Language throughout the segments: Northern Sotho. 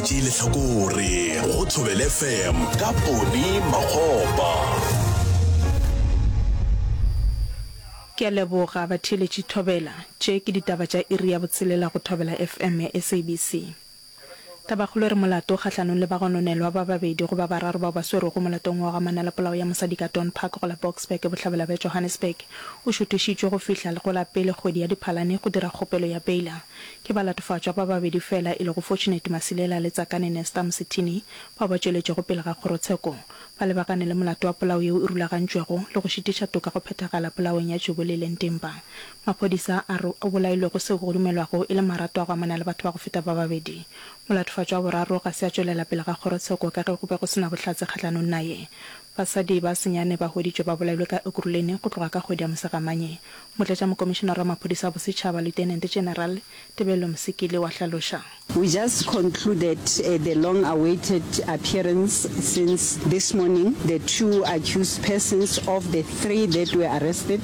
tše lehlakore go thobele fm ka pone magopa ke a leboga batheeletši thobela tše ke ditaba tša iri ya botshelela go thobela fm ya sabc tabakgolo e re molato kgahlanong le bagononelwa ba babedi go ba bararo bao ba swerwego molatong wa go amana le polao ya mosadi ka don park go la boksburg bohlabela bja johannesburg o šuthišitšwe go fihla go la pele kgwedi ya diphalane go dira kgopelo ya beila Ke balatofatšwa ba babedi feela e lego Fortunate Masilela le Tsakane Nesta Msithini bao ba tšweletšego pele ga kgorotsheko ba lebagane le molato wa polao yeo e rulagantšwego le go šitiša toka go phethagala polaong ya Jubulile Ntimba maphodisa a re o bolailwego seo go dumelwago e le marato a go amana le batho ba go feta ba babedi. Molatofatšwa wa boraro ga se a tšwelela pele ga kgorotsheko ka ge go be go se na bohlatse kgahlanong naye. Basadi ba senyane ba hweditšwe ba bolailwe ka Ekurhuleni go tloga ka kgwedi ya Mosegamanye. Motlatšamokomišenare wa Maphodisa a Bosetšhaba, Lieutenant General Tebello Msikili wa hlaloša. We just concluded the long awaited appearance since this morning, the two accused persons of the three that were arrested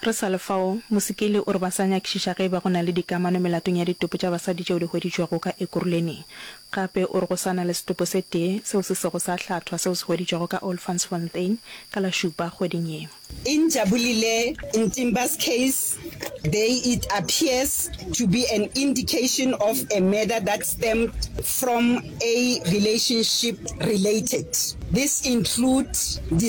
Re sa le fao, Musikili o re ba sa nyakišiša ge e ba go na le dikamano melatong ya ditopo tša basadi tšeo di hweditšwego ka Ekurhuleni. Gape o re go sa na le setopo se tee seo se sego sa hlathwa seo se hweditšwego ka Olfantsfontein ka la Šupa kgweding ye. Injabulile Ntimba's case, they it appears to be an indication of a murder that stemmed from a relationship related. This include di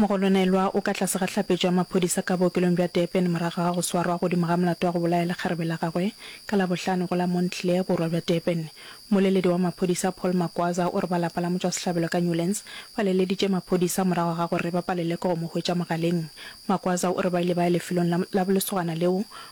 Mogolonelwa o ka tlase ga hlapetšo ya maphodisa ka bookelong bja Durban morago ga go swarwa godimo ga molato wa go bolaya lekgarebe la gagwe ka Labohlano go la Montclair, borwa bja Durban. Mmoleledi wa maphodisa Paul Magwaza o re ba lapa la motšwasehlabelo ka Newlands ba leleditše maphodisa morago ga gore ba palelwe ke go mo hwetša mogaleng. Magwaza o re ba ile ba ya lefelong la lesogana leo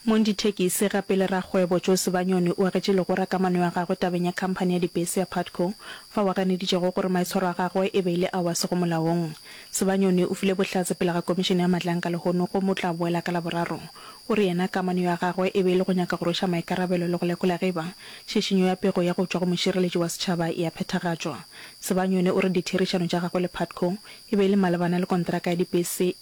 Mong dithekisi gape le rakgwebo Joe Sebanyoni o agetše legora ka mano ya gagwe tabeng ya khamphani ya dibese ya Putco fao a ganeditšego gore maitshwaro a gagwe e be e le ao a sego molaong. Sebanyoni o file bohlatse pele ga Komišene ya Matlaanka lehono gomme o tla boela ka Laboraro. O re yena kamano ya gagwe e be e le go nyaka go rweša maikarabelo le go lekola ge e ba šišinyo ya pego ya go tšwa go mošireletši wa setšhaba e a phethagatšwa. Sebanyoni o re ditherišano tša gagwe le Putco e be e le malebana le konteraka ya dibese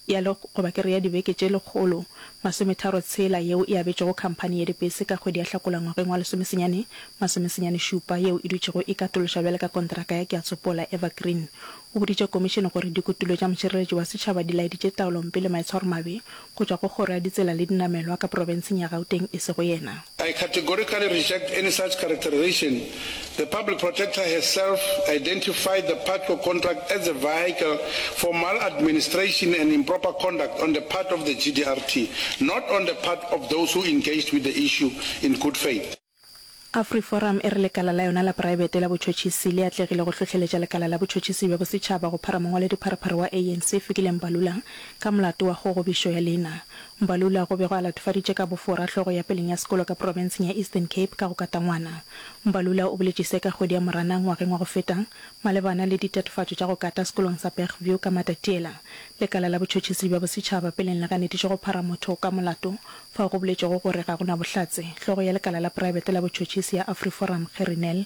ya le goba ke re ya dibeke tše lekgolo masometharo tshela yeo e abetšwego khamphani ya dibese ka kgwedi ya Hlakola ngwageng wa lesomesenyane masomesenyane šupa yeo e dutšego e katološwa bjale ka kontraka ya Ke a Tsopola Evergreen o boditše Komišene gore dikutulo tša Mošireletši wa Setšhaba di laeditše taolompe le maitshwaromabe go tšwa go Kgoro ya Ditsela le Dinamelwa ka Profenseng ya Gauteng e sego yena I categorically reject any such characterization. The Public Protector has self identified the Patco contract as a vehicle for maladministration and improper conduct on the part of the GDRT, not on the part of those who engaged with the issue in good faith. AfriForum e re lekala la yona la poraebete la botšhotšhisi le atlegile go hlohleletša lekala la botšhotšhisi bja bosetšhaba go phara mongwaledi-pharephare wa ANC Fikile Mbalula ka molato wa kgogobišo ya leina. Mbalula go be go a latofaditše ka bofora hlogo ya peleng ya sekolo ka profenseng ya Eastern Cape ka go katangwana. Mbalula o boletše se ka kgwedi ya Moranang ngwageng wa go feta malebana le ditatofatšo tša go kata sekolong sa Bergview ka Matatiela. Lekala la Botšhotšhisi bja Bosetšhaba peleng le ganeditše go phara motho ka molato fao go boletšwego gore ga go na bohlatse. Hlogo ya lekala la praebete la botšhotšhisi ya Afriforum Gerrie Nel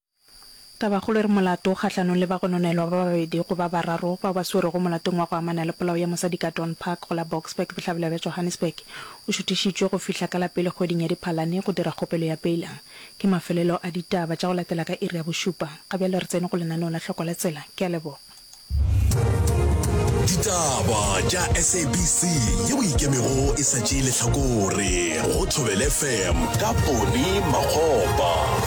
Tabakgolo e re molato kgahlanong le bagononelwa ba babedi go ba bararo bao ba swerwego molatong wa go amana le polao ya mosadi ka Dawn Park go la Boksburg bohlabela bja Johannesburg o šuthišitšwe go fihla ka la pele kgweding ya Diphalane go dira kgopelo ya beila ke mafelelo a ditaba tša go latela ka iri ya bošupa ga bjale re tsene go lenaneo la hloko la tsela ke a leboga. Ditaba tša SABC ye o ikemego e sa tšee lehlakore go Thobel FM ka Pone Makgopa.